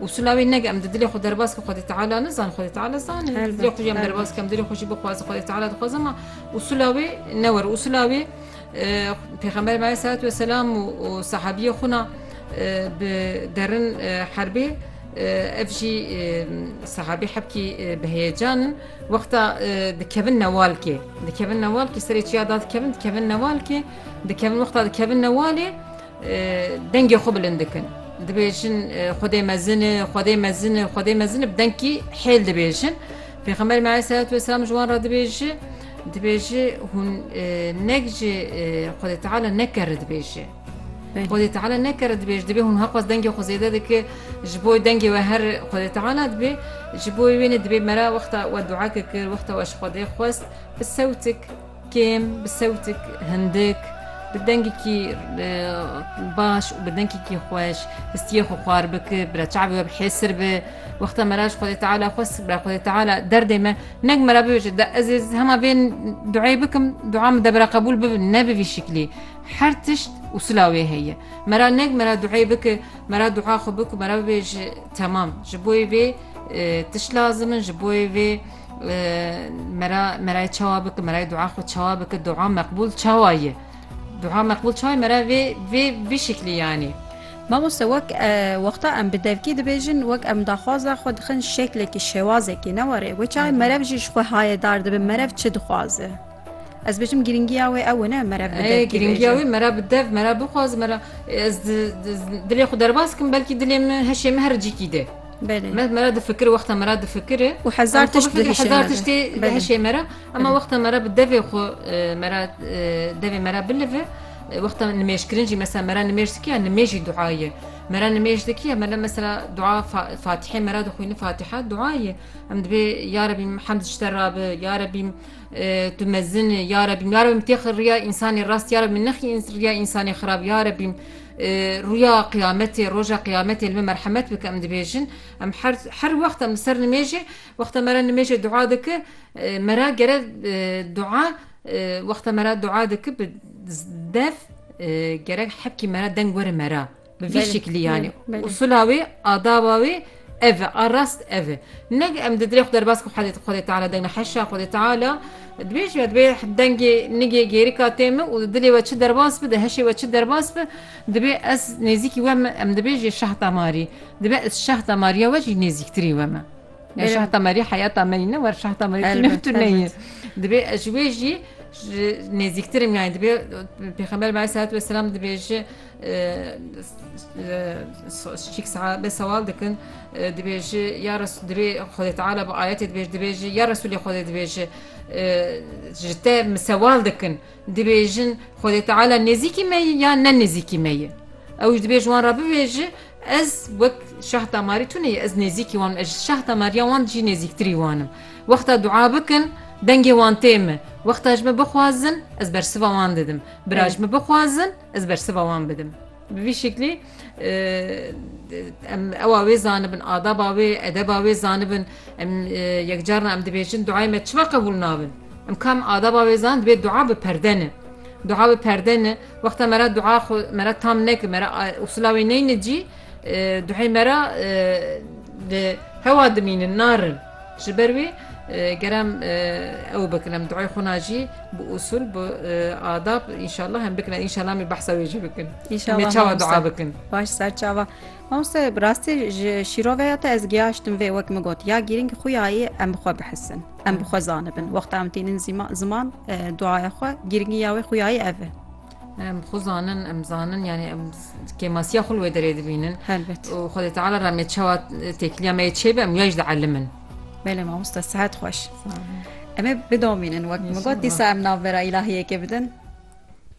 Usula wê neke em di dilê xwe derbas ke Xwedê Teala nizan Xwedê Teala zan dilê xwe jî em derbas ke em dilê xwe jî bixwaze Xwedê Teala dixwaze ma usula wê newer usula wê pêxember me selat ve selam û sahabiye xuna bi derin herbê ev jî sahabî hebkî bi heyecanin wexta dikevin newalkê dikevin newalkê serê çiya da dikevin dikevin newalkê dikevin wexta dikevin newalê Dengê xwe bilind dikin. Dibêjin Xwedê mezin e, Xwedê mezin e, Xwedê mezin e bi dengkî hêl dibêjin. Pêxemberê me aleyhisselatu vesselam ji wan re dibêji dibêji hûn nek ji Xwedê Teala nekere dibêji. Xwedê Teala nekere dibêj dibê hûn heqas dengê xwe zêde dike ji bo dengê we her Xwedê Teala dibê ji bo wê wêne dibê mera wexta we duake kir wexta we ji Xwedê xwest bi sewtik Kêm, bi sewtik hindik, bi dengekî baş û bi dengekî xweş histiyê xwe xwar bike, bila çavê we bi hêsir be. Wexta me ra ji Xwedê Teala xwest bila Xwedê Teala derdê me neg me ra bibêje de ez ê hema vê duayê bikim, dua min debira qebûl bibe ne bi vî şiklî. Her tişt û sila wê heye. Me ra neg me ra duayê bike, me ra dua xwe bike û me ra bibêje temam. Ji bo wê vê tişt lazim in, ji bo wê vê. Mera merayê çawa bike merayê dua xwe çawa bike dua meqbûl çawa ye dua meqbûl çawa mera vê vê vê şeklî yanî Mamoste wek wexta em bi devkî dibêjin wek em daxwaza xwe dixin şeklekî şêwazekî ne were wê çawa merev jî ji xwe haye dar dibe merev çi dixwaze. Ez bêjim girîngiya wê ew ne mere bi dev girîngiya wê mere bi dev mere bixwaz mere ez dilê xwe derbas kim belkî dilê min heşê min her cikî de me mera difikir wexta mera difikiri û hezar tişt hezar tiştê heşê mera ema wexta mera bi devê xwe mera devê mera bilive wexta nimêjkirin jî mesela mera nimêj dikiye nimêjî duaye mera nimêj dikiye mera mesela dua fatihê mera dixwîni fatiha duaye em dibê ya rebî hemd ji te rabe ya rebî Tu mezin î ya Rebî ya Rebî têxi rûya însanê rast ya Rebî nexî rûya însanê xirab ya Rebî rûya qiyametê roja qiyametê li me merhemet bike em dibêjin em her her wext em li ser nimêjê wexta me re nimêjê dua dike me re gere dua wexta me re dua dike bi dev gerek hepkî me re deng were me re Bi vî şeklî yanî usula wê adaba wê ev e a rast ev e neg em di dirê xu derbas ku hedê xwedê teala deng heşa xwedê teala dibêj ya dibê dengê nigê gêrika tê min û dilê we çi derbas bi di heşê we çi derbas bi dibê ez nêzîkî we min em dibêjê şehta marî dibe ez şehta mariya we jî nêzîktirî we min şehta marî heyata me ne wer şehta marî tu neyê dibê ez ji wê jî nêzîktirim yani dibê pêxember me selat ve selam dibêje Şik sahabe sewal dikin dibêji ya dirê Xwedê Teala bi ayetê dibêji dibêji ya Resulê Xwedê dibêji ji te min sewal dikin dibêjin Xwedê Teala nêzîkî me ye ya ne nêzîkî me ye ew ji dibêji wan re bibêji ez wek şah damarî tune ye ez nêzîkî wan ez ji şah damariya wan jî nêzîktirî wan im wexta dua bikin dengê wan tê min wexta ji min bixwazin ez bersiva wan didim bira ji min bixwazin Ez bersiva wan bidim. Bi vî şeklê em ewa wê zanibin, adaba wê, edeba wê zanibin. Em yekcarna em dibêjin duayê me çima qebûl nabin? Em kam adaba wê zan dibê dua bi perde ne. Dua bi perde ne, wexta me ra dua xwe me ra tam nekir, me ra usula wê neyne cî, duhê me ra li hewa dimînin, narin. Ji ber wê ger em ew bikin em duayê xwe na jî bi usûl bi adab înşallah em bikin înşallah em ê behsa wê jî bikin Em ê çawa dua bikin. Baş ser çawa Mamoste bi rastî ji şîroveya te ez giyaştim vê wek min got ya gîrîng xuyayê em bi xwe bihisin em bi xwe zanibin wexta em tînin ziman duaya xwe gîringî ya wê xuyayê ev e. Em xwe zanin em zanin yanî em kêmasiya xul wê derê dibînin helbet û xwedê teala re me çawa têkiliya me çêbe em ya ji de elimin Belê mamosta sehet xweş Em ê bidomînin wek min got dîsa em navbera îlahiyekê bidin